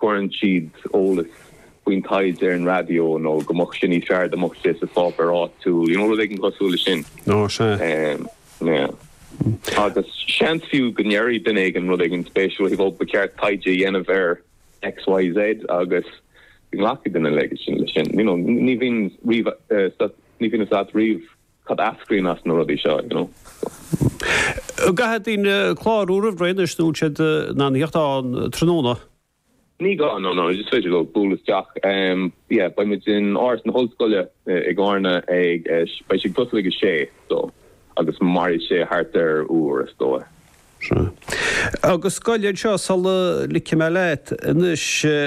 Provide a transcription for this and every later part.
cuireann siad eolas faoin taighde ar an raidió nó go mbeadh sé níos fearr dá mbeadh sé sa pháipéar áitiúil, you know, rud éigin cosúil le sin. Ná sea. Yeah. Agus seans fiú go ndéarfadh duine éigin rud éigin spéisiúil uaidh, ó ba cheart taighde a dhéanamh ar XYZ agus go nglacfadh duine leis sin, you know, ní bhíonn riamh, ní bhíonn a fhios agat riamh cad a eascraíonn as na rudaí seo, you know. An gcaithfidh daoine clárú roimh ré anois nó an siad in ann teacht ann tráthnóna? Ní gá, no, no, is féidir leo bualadh isteach. Yeah, beidh muid in Áras na hOllscoile i gCárna ag, beidh sé ag tosnú ag a sé, so, agus mairfidh sé thart ar uair is dóigh. Sea. Agus gabh i leith anseo sula ligfidh mé leat. Anois,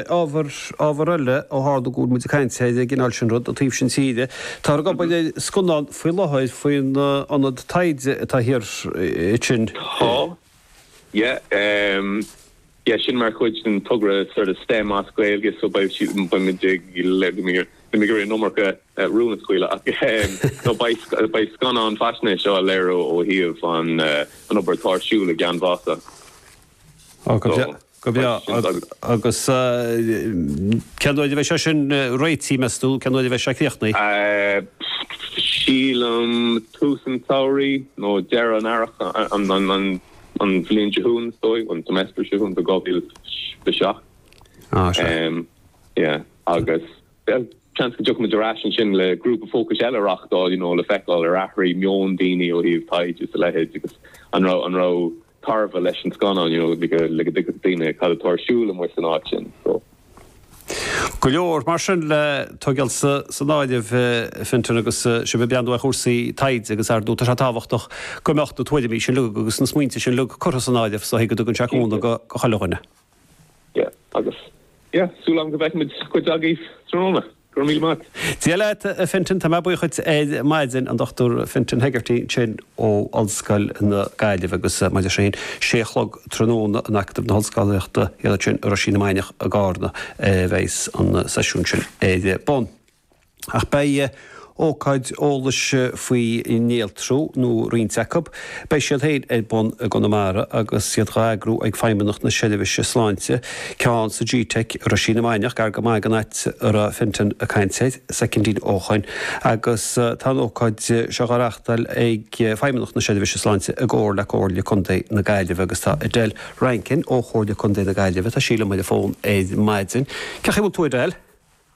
ábhar, ábhar eile ó tharla go bhfuil muid ag caint ar an gcineál sin rud, ón taobh sin tíre. Táthar ag obair ar scannán faoi láthair faoin ionad taighde atá thiar ansin. Tá, yeah. Yes, sin mar chuid den togra seo STEM as Gaeilge, so beidh siad in beimid ag le go mbeimid go mbeimid an iomarca rún a scaoileadh ach nó beidh beidh scannán faisnéise á léiriú ó thaobh an an obair atá ar siúl i gCeann Mhása. Ó go breá go breá agus cén uair a bheidh sé sin réitithe meas tú, cén uair a bheidh sé críochnaithe? Sílim tús an tsamhraidh nó deireadh an earraigh an an an bhliain seo chugainn is dóigh, an semester seo chugainn, so 2027. Á, sure. Um, yeah, agus yeah, seans go dtiocfaidh muid ar ais ansin le grúpa fócais eile a reachtáil, you know, le feiceáil ar athraigh meon daoine ó thaobh taighde is a leithéid agus an raibh an raibh tairbhe leis an scannán, you know, le go le go dtuigfeadh daoine cad atá ar siúl amuigh san áit sin, so. Go leor, mar sin, le tógáil san áireamh, a Fintan, agus sibh ag breathnú ar chúrsaí taighde agus ar ndóigh, tá sé tábhachtach go mbeadh na tuairimí sin uilig agus na smaointe sin uilig curtha san áireamh is go dtugann sé cúnamh do chuile dhuine. Yeah, agus yeah, súil agam go bhfeicfimid cuid agaibh tráthnóna. Go raibh míle maith agat. Dia leat a Fintan, tá mé buíoch duit ar maidin, an Dr Fintan Hegarty sin ó Ollscoil na Gaillimhe agus mar sin, sé a chlog tráthnóna in Acadamh na hOllscolaíochta thiar ansin, Roisín na Mainiach i gCarna a bheas an seisiún sin ar bun. Ach beidh ócáid eolais faoi néaltrú nó roinnt acu. Beidh siad fhéin ar bun i gConamara agus iad dhá n-eagrú ag Feidhmeannacht na Seirbhíse Sláinte, ceann sa gteic, Roisín na Mainiach, gar go maith ag an áit a raibh Fintan ag caint air, soicindín ó shoin, agus tá an ócáid seo dhá reachtáil ag Feidhmeannacht na Seirbhíse Sláinte i gcomhar le Comhairle Contae na Gaillimhe agus tá Edel Rankin ó Chomhairle Contae na Gaillimhe, tá sí liom ar an bhfón ar maidin. Cén chaoi a bhfuil tú a Edel?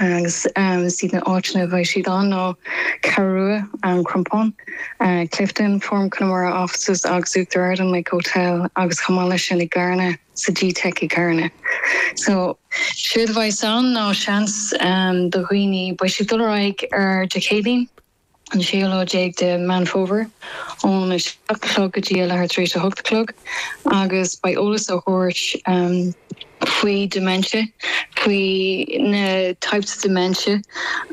agus is iad na áiteanna a bheidh siad ann ná Ceathrú Rua, An Crompán, Clifden, Forum Connemara offices agus Uachtar Ard, an Lake Hotel agus chomh maith leis sin i gCarna sa gteic i gCarna. So, séard a bheas ann ná seans do dhaoine, beidh siad ag dul ar aghaidh ar Dé Céadaoin, an séú lá déag de Meán Fómhair, óna 7 a chlog go dtí a leathuair tar éis a hocht a chlog, agus beidh eolas á thabhairt faoi dementia, faoi na types of dementia,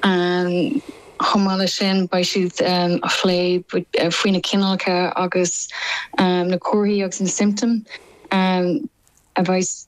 chomh maith leis sin beidh siad ag plé faoi na cineálacha agus na comharthaí agus na siomptóim a bheas.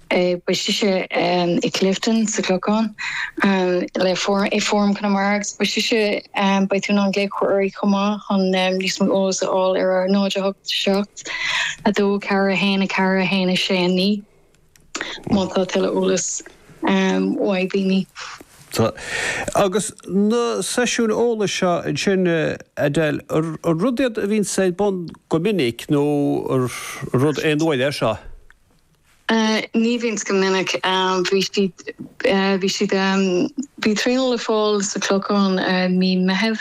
Beidh sé i Clifden sa Clochán le Forum, Forum Chonamara agus beidh sé Botún an Ghaeilgeoirí chomh maith chun níos mó eolas a fháil ar a 08, 7, 2, 4, 1, 4, 1, 6, 9. Má tá tuilleadh eolais uaibh. Tá. Agus na seisiúin eolais seo ansin, Adele, an rud iad a bhíonn ar bun go minic nó an rud aon uair é seo? Ní bhíonns go minic. Bhí siad, bhí siad, bhí traenáil le fáil sa Chlochán mí Meithimh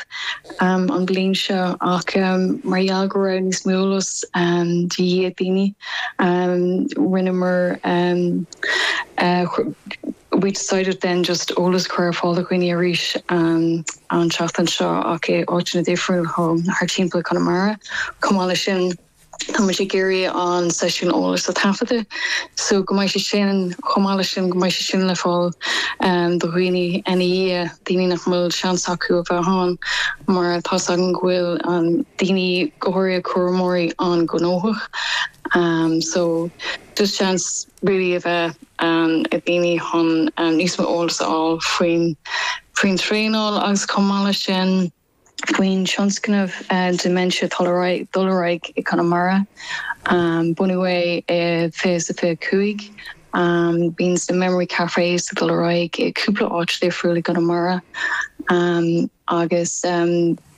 an bliain seo ach mar gheall go raibh níos mó eolas de dhíth ag daoine rinneamar, we decided then just eolas a chur ar fáil do dhaoine arís an tseachtain seo ach i áiteanna difriúil thart timpeall Conamara. Chomh maith leis sin. Tá muid ag iarraidh an seisiún eolais a taifeadadh so go mbeidh sé sin, chomh maith leis sin, go mbeidh sé sin le fáil do dhaoine ina dhiaidh, daoine nach mbeadh seans acu a bheith ann mar tá a fhios againn go bhfuil daoine, go háirithe cúramóirí an-ghnóthach so just seans really a bheith ag daoine chun níos mó eolais a fháil faoin, faoin traenáil agus chomh maith leis sin. Faoin tionscnamh Dementia atá ag dul ar aghaidh i gConamara, bunaíodh é i 2025, bíonns na Memory Cafés ag dul ar aghaidh i gcúpla áit dhifriúil i gConamara agus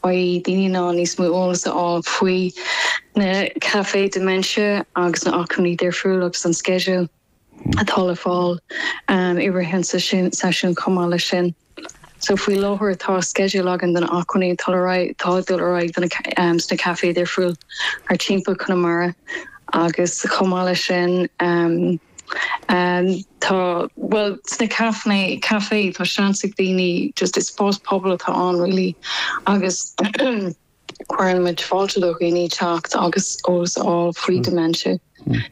beidh daoine in ann níos mó eolas a fháil faoi na caifé dementia agus na acmhainní difriúil agus an sceideal. atá le fáil i rith an seisiúin chomh maith leis sin. So faoi láthair tá sceideal againn de na acmhainní atá le raghaidh, atá ag dul ar aghaidh sna caifé difriúil thart timpeall Conamara agus chomh maith leis sin tá, bhuel sna caifé, caifé tá seans ag daoine just is spás pobail atá ann really agus Cuireann muid fáilte do dhaoine teacht agus eolas a fháil faoi dementia.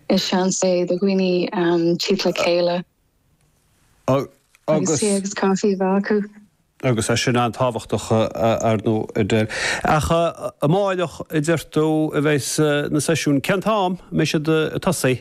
Is seans é do dhaoine tíocht le chéile agus tae agus caife a bheith acu. Agus é sin an-tábhachtach, ar ndóigh, a Edel. Ach amárach, a deir tú, a bheidh na seisiúin. Cén t-am a mbeidh siad ag tosaí?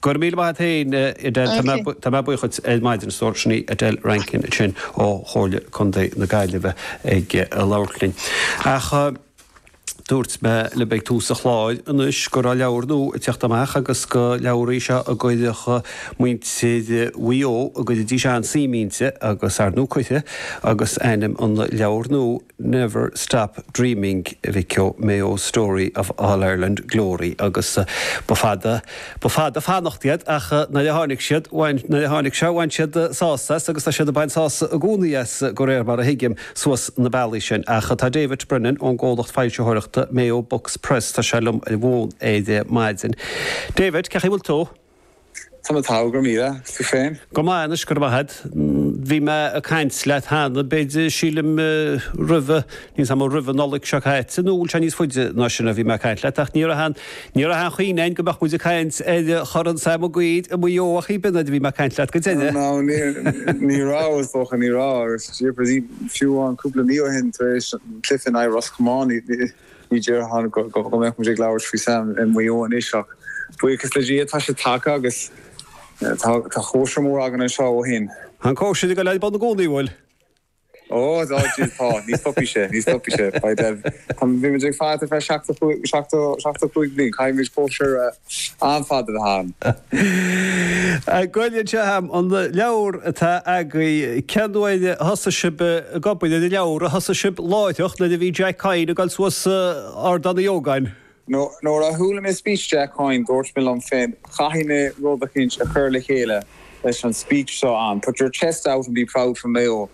Go raibh míle maith a't fhéin Edel, tá mé buíoch duit ar maidin, stór, sin í Edel Rankin sin ó Chomhairle Contae na Gaillimhe ag labhairt linn. Ach dúirt mé libh ag tús an chláir anois go raibh leabhar nua ag teacht amach agus gur leabhar í seo a gcuirfeadh muintir Mhaigh Eo, go gcuirfidís an-suim inti agus ar ndóigh cuirfidh agus ainm an leabhair nua. Never stop dreaming A Mayo Story of All-Ireland Glory agus ba fada, ba fada ag fanacht iad ach nuair a tháinig siad, bhain, nuair a tháinig sé bhain siad sásamh as agus tá siad ag baint sásamh i gcónaí as go réir mar a thuigim suas na bealaí sin ach tá David Brennan ón gcomhlacht foilsitheoireachta Mayo Books Press, tá sé liom ar an bhfón ar maidin. David, cén chaoi a bhfuil tú. Tá mé togha go raibh míle. Tú féin? Go maith anois, go raibh maith agat. Bhí mé ag caint leat cheana, b'fhéidir, sílim, roimhe, níos ama, roimhe Nollaig seo caite, nó an bhfuil sé níos faide ná sin a bhí mé ag caint leat, ach ní raibh an, ní raibh aon chuimhneamh againn go mbeadh muid ag caint ar Chorn Sam Mac Uidhir i Maigh Eo a David nuair a bhí mé ag caint leat go deimhin. Á, ní raibh, is dócha, ní raibh, agus jeepers, fiú amháin cúpla mí ó shin tar éis an cluiche in aghaidh Ros Comáin, ní, Ní déarfainn go mbeadh muid ag labhairt faoi Sam i Maigh Eo anois ach buíochas le Dia tá sé tagtha agus tá cóisir mór againn anseo ó shin. An cóisir ag dul ar bun i gcónaí, an bhfuil? Ó, tá. Ní stopfaidh sé, ní stopfaidh sé. Bhí muid ag faire ar feadh seachtó cúig bliain. Caithfidh muid cóisir a. An-fhada a bheith againn. Gabh i leith anseo a'm, an leabhar atá agaibh, cén uair a thosaigh sibh ag obair ar an leabhar? Ar thosaigh sibh láithreach nuair a bhí Jack Coyne ag dul suas Ardán Uí Ógáin? Nuair a chuala mé speech Jack Coyne dúirt mé liom féin caithfidh mé rud eicínt a chur le chéile leis an speech seo ann, put your chest out and be proud you're from Mayo.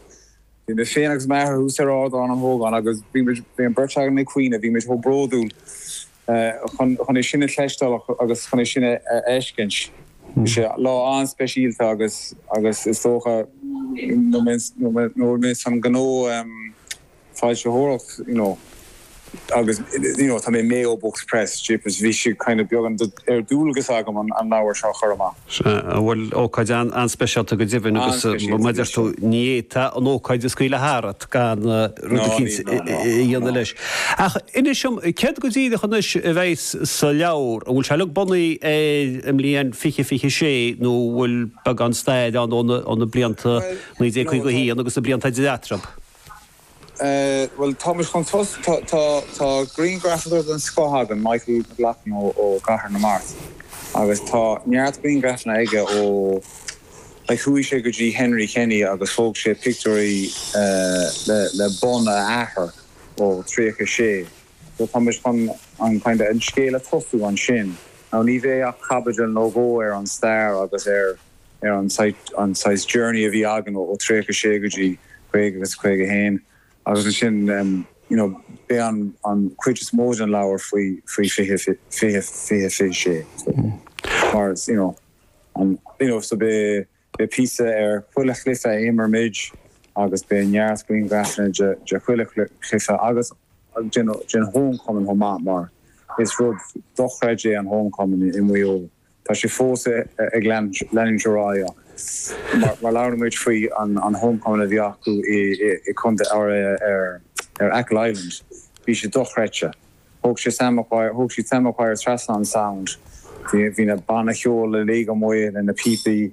Bhí mé féin agus m'athair thuas ar Ardán an hÓgáin agus bhí muid, bhí an bheirt againn ag caoineadh, bhí muid chomh bródúil. chun é sin a chloisteáil agus chun é sin a fheiscint. Bhí sé lá an-speisialta agus agus is dócha oibríonn mé san gnó foilsitheoireacht you know agus you know tá mé Mayo Books Press jeepers bhí sé kind of beagnach dualgas agam an leabhar seo a chur amach. Sea, bhuel, ócáid an-speisialta go deimhin agus mar a deir tú, ní fhéadfá an ócáid a scaoileadh tharat gan rud eicínt a dhéanamh leis. Ach inis dom, céard go díreach anois a bheidh sa leabhar? An bhfuil sé uilig bunaithe ar an mbliain fiche fiche a sé nó an bhfuil beagán stair ann ó na blianta 1951 agus na blianta idir eatarthu? Bhuel, táimid chun tosaigh. Tá griangrafadóir den scoth againn, Michael McLaughlin ó Chathair na Mart agus tá neart griangrafanna aige ó like chuaigh sé go dtí Henry Kenny agus thóg sé pictiúirí le bonn a athar ó thríocha a sé so táimid chun an kind of an scéal a tosú ansin. Now ní bheidh ach caibidil nó dhó ar an stair agus ar. ar an saghas journey a bhí againn ó 36 go dtí 50 agus 51 agus ansin you know beidh an an cuid is mó den leabhar faoi faoi 20 20 20 26 so mar you know an you know so beidh beidh píosa ar chuile chluiche a imir muid agus beidh neart grianghrafanna de de chuile chluiche agus den den homecoming chomh maith mar is rud dochreidte é an homecoming i Maigh Eo. Tá sé fós ag leanúint ar aghaidh ach má labhrann muid faoi an homecoming a bhí acu i contae ar Achill Island bhí sé dochreidte. Thóg sé Sam Maguire, thóg siad Sam Maguire trasna an Sound. Bhí na banna ceoil uilig amuigh le na píopaí.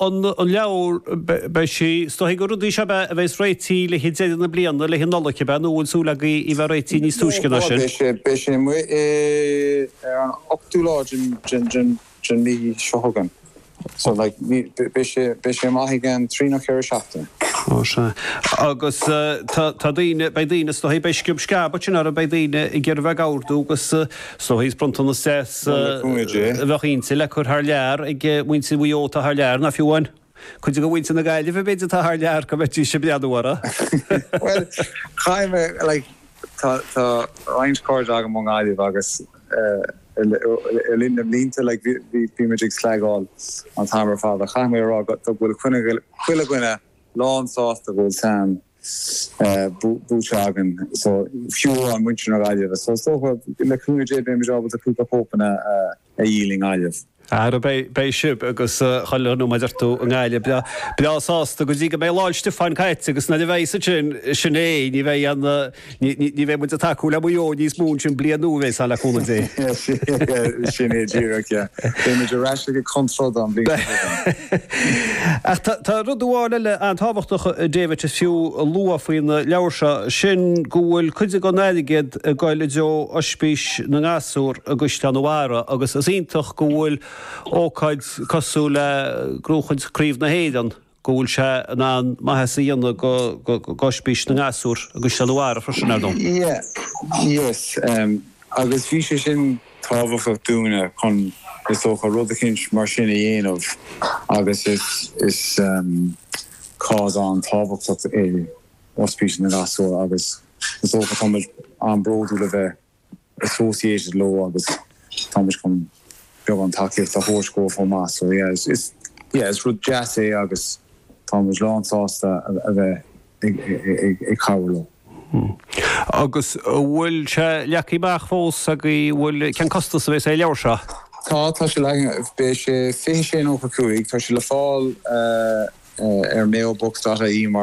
an leabhar. Beidh sí. Is dóigh gur rud í seo ab ea a bheas réitithe le haghaidh deireadh na bliana, le haghaidh Nollaig, ab ea nó an bhfuil súil agaibh í bheith réitithe níos túisce ná sin? Beidh sé amuigh ar an ochtú lá den mhí seo chugainn. So beidh sé amach i gceann trí nó ceithre seachtaine. Ó, sea. Agus tá daoine, beidh daoine, is dóigh, beidh sciob sceab ansin orthu, beidh daoine ag iarraidh bheith ag réamhordú agus Is dóigh is bronntanas deas a bheadh inti le cur thar lear ag muintir Mhaigh Eo atá thar lear, nó fiú amháin cuid de mhuintir na Gaillimhe b'fhéidir atá thar lear go mbeidís ag breathnú uirthi. Bhuel, caithfidh mé, like, tá, tá roinnt cairde agam ón nGaillimh agus le linn na mblianta, like, bhí, bhí muid ag slagáil an t-am ar fad ach caithfidh mé a rá go, go bhfuil chuile dhuine lán sásta go bhfuil Sam, buaite againn so fiú amháin muintir na Gaillimhe so is dócha le cúnamh Dé beimid ábalta cúpla cóipeanna a dhíol i nGaillimh. Ara beidh sibh agus chuile dhuine mar a deir tú i nGaillimh breá sásta go dtí go mbeidh Lá'l Stiofáin caite agus nuair a bheidh sin sin é ní bheidh aon Ní bheidh muid ag tacú le Maigh Eo níos mó ansin bliain nua, a bheas ann le cúnamh Dé. Sin é díreach, yeah. Beidh muid ar ais ag an chun troid an bhliain seo chugainn. Ach tá rud amháin eile an-tábhachtach, David, is fiú a lua faoin leabhar seo, sin go bhfuil cuid den airgead ag goil i dtreo Ospís na nGasúr i gCaisleán an Bharraigh agus is iontach go bhfuil ócáid cosúil le gnóchaint Craobh na hÉireann go bhfuil sé in ann maitheas a dhéanamh do Ospís na nGasúr agus na Mater ar a shon sin, ar ndóigh. Yeah, yes, agus bhí sé sin tábhachtach dúinne chun, is dócha, rud eicínt mar sin a dhéanamh agus is cause an-tábhachtach é oispís na ngasúr agus is dócha, tá muid an-bródúil a bheith associated leo agus tá muid chun beagán tacaíocht a thabhairt dóibh chomh maith so yeah is yeah is rud deas é agus tá muid lán sásta a bheith ag ag cabhrú leo. Hmm. Agus bhfuil sé leagthaí amach fós agaibh, bhuel cén costas a bhéas ar an leabhar seo? Tá, tá sé leagtha, beidh sé fiche sé nócha cúig, tá sé le fáil ar mayobooks dot ie mar.